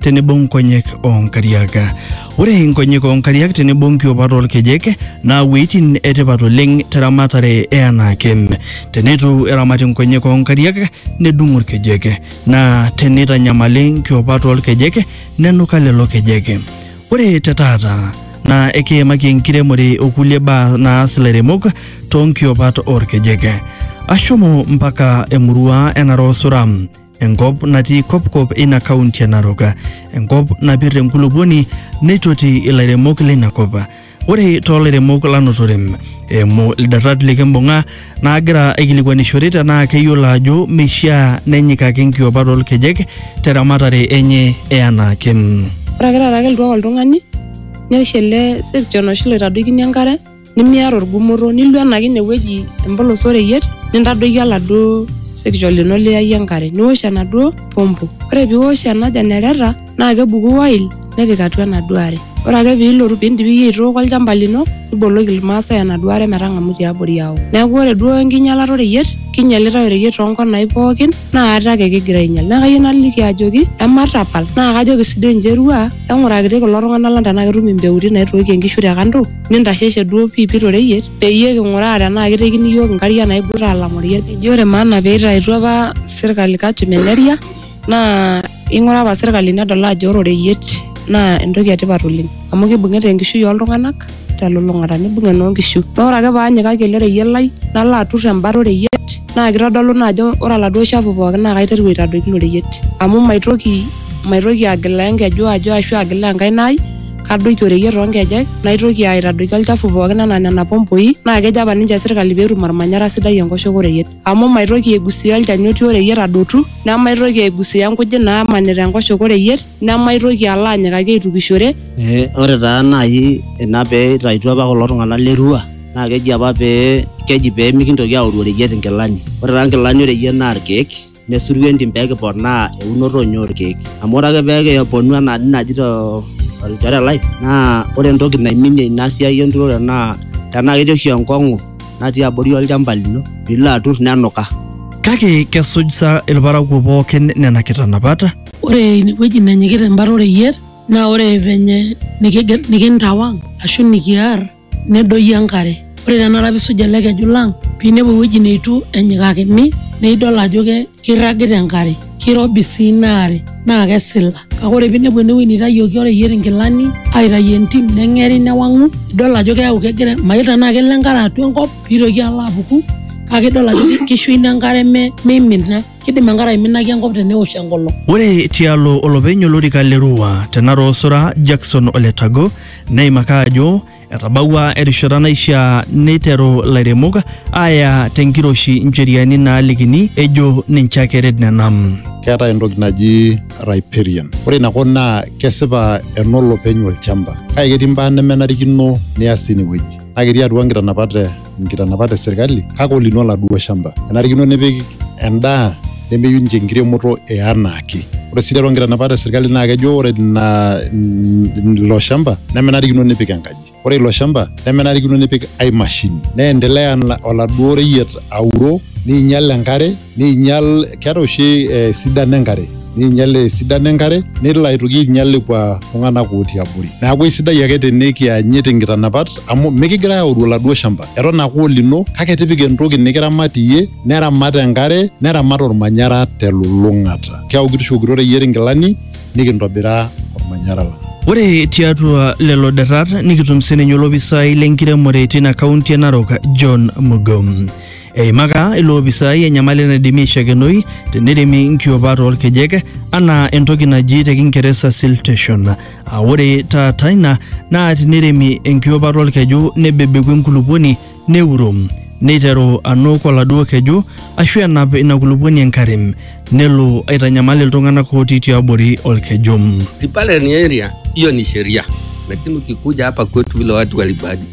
tenebo nkonyek oo nkariak. Ore nkonyek oo nkariak tenebo nkiopat oolkejek naa wueitin etipat oleng teramatare e anaake. Teneitu eramati nkonyek oo nkariak nedung'u ilkejek naa teneitanyamali nkiopat oolkejek nenuka lelo kejek. Ore te taata naa ekiimaki enkiremore o kulie baa naas ilairemok too nkiopat oolkejek. Ashomo mpaka emurua e Narok Suram enkop natii kopkop eina kaunti e Narok, enkop napir enkulupuoni neitoti ilairemok leina kop. Ore too lairemok lanotore eimu ildatat likimbung'a naagira aikilikuanishore tenaa keyiolo ajo meishiaa nenyikaki nkiopat olkejek te ramatare enye e anaake. Ore ake taata kelotu ake oltung'ani newosh ele sirchon oshi loitadoikini enkare nimiata orgumoto nilo enaki inewueji empolos oreyiet nintadoiki oladuo sekicho lino liyayie enkare niwosh enaduo pompo ore piwosh ena jenereta naa kebuku oil nepik atua enaduo are ore ake piilotu piindip iyie aitooko olchamba lino niboloki irmaasay enaduo are metang'amu tiabori ao neeku ore duo enkinyialata oreyiet kinyialitae oreyiet tonkonai pookin naa ate ake kigira ainyial naa kayieu naliki ajoki ematapal naa kajoki sininche irua eng'urakiti kulo tung'anak lang tenaa ketum impeutin naitookie inkishu te kando. nintasheshe duo piipi toreyiet peyie king'uraa tenaa kitekini iyiook inkariak naibuta alang oreyiet eji ore maana peitaituo apa sirkali kajo meneria naa ing'ura apa sirkali nedol ajo ore oreyiet naa entoki etipat oleng amu kibung'ita enkishui oltung'anak telulung'ata nibung enoonkishu naa ore ake paanyikaki ele reyiet lai nalo aturr embata oreyiet. naa kitodolu naa ajo ore oladuo shafu pookin naa kaiteru aitadoiki ilo reyiet amu maitoki maitoki agilaa enkeju ajo ashu agilaa enkaina ai kadoiki oreyiet toonkejek naitoki aitadoiki olchafu pookin anaa nena pompoi naa kejo apa ninche sirkali peetum ormanyara sidai enkoshoke oreyiet amu maitoki aigusia olchani otii oreyiet adotu nemaitoki aigusia inkujit naamanita enkoshoke oreyiet nemaitoki alo anyikaki aitukishore. Ee ore taa naai ina pee itaituo apa kulo tung'anak le Arua naa keji apa pee keji pee mikintoki aoru oreyiet inkilani. Ore taa inkilani oreyiet naa irkeek nesuru entim pee kiponaa eunoto oonyoo orkeek. Amu ore ake pee kiponu enaa dii naji too olchore lai naa ore entoki naiminie ina siai enturore naa tenaa ketii oshi enkong'u natii abori olchamba lino piilo atur nenuka. Kake kesuj sa ilparakuo pooki nena kitanapat? Ore ine wueji nenyikita embata oreyiet naa ore venye nikintawang ashu nikiar. nedoyio enkare ore tenakata piisuj ele keju lang piinepu ewueji neitu enyikakini neidol ajo ke keirragita enkare kirobi sii ina are naa kesila kake ore piinepu enewueji neitayioki oreyiet inkilani aitayuo entim neng'eri newang'u idol ajo keeku kegira mayiolo tenaa kelo enkare atua enkop piitoki alo apuku kake idol ajo kisho ina enkare me meimina kidim enkare aiminaki enkop tenewosh enkolong. Ore tialo olopeny olorika le Rua te Narok Osura Jackson Ole Tago Neimaka ajo etabawua erishata naishaa neiteru lairemok aaya tenkiroshi ncheriani naalikini ejo ninche ake eret nena. keetae entoki naji riparian ore ina kop naa kesipa enolopeny olchamba kake ketii mbaa nemenarikino nias tine wueji naa ketii atua nkitanapat e nkitanapat e serkali kake olino oladuo shamba enarikino nipik endaa nemeyieu ninche enkiremoto e anaake ore sii tiatua nkitanapat e serkali naa kejo ore ina ilo shamba nemenarikino nipik enkaji ore ilo shamba nemenarikino nipik ai mashini neendelea oladuo reyiet auro niinyial enkare Neinyal, keeta oshi eh, sidano enkare neinyal esidano enkare nelo aitoki ainyal lekua tung'anak otii abori neeku eisidai ake tenikianyit inkitanapat amu mikigirai aoru oladuo shamba eton ake olino kake tipika entoki nikiramat iyie neramat enkare neramat ormanyara telulung'ata keeku kitishokito reyiet inkilani nikintobira ormanyara lang Ore tiatua lelo derrat nikitum sininye olopisai lenkiremore tina kaunti e Narok John Mugo. Eimaka iloopisai enyamali naidimi aishakenoi teneremi nkiopat oolkejek anaa entoki naji te Kingeresa siltation. Aa ore taata ina naa tineremi enkiopata olkeju nebebeku enkulupuoni neuro neiteru anuk oladuo keju ashu enap ina kulupuoni enkare nelo aitanyamal iltung'anak ootii tiabori olkeju. Sipale ni area hiyo ni sheria, lakini ukikuja hapa kwetu vile watu walibadi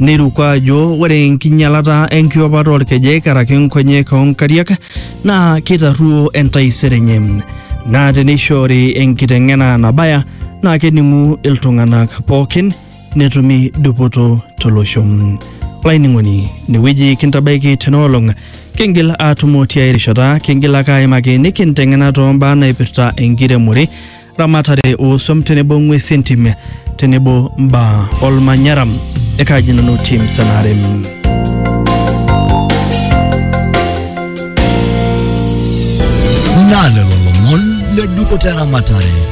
Neiruko ajo ore enkinyalata enkiopata olkejek karaki nkonyek oo nkariak naa keitarruo entaisere enye naa teneishoori enkiteng'ena nabaya naa kening'u iltung'anak pookin netumi dupoto tolosho. Olainining'oni inewueji kintabaiki tena olong kingil aatumo tiai rishata kingil ake aimaki nikinteng'ena too mbaa naipirta enkiremore ramatare ooswam tenebo ng'wesi entim tenebo mbaa olmanyara ekaji nanu tim sanarem Nalelo lomon le dukuta eramatare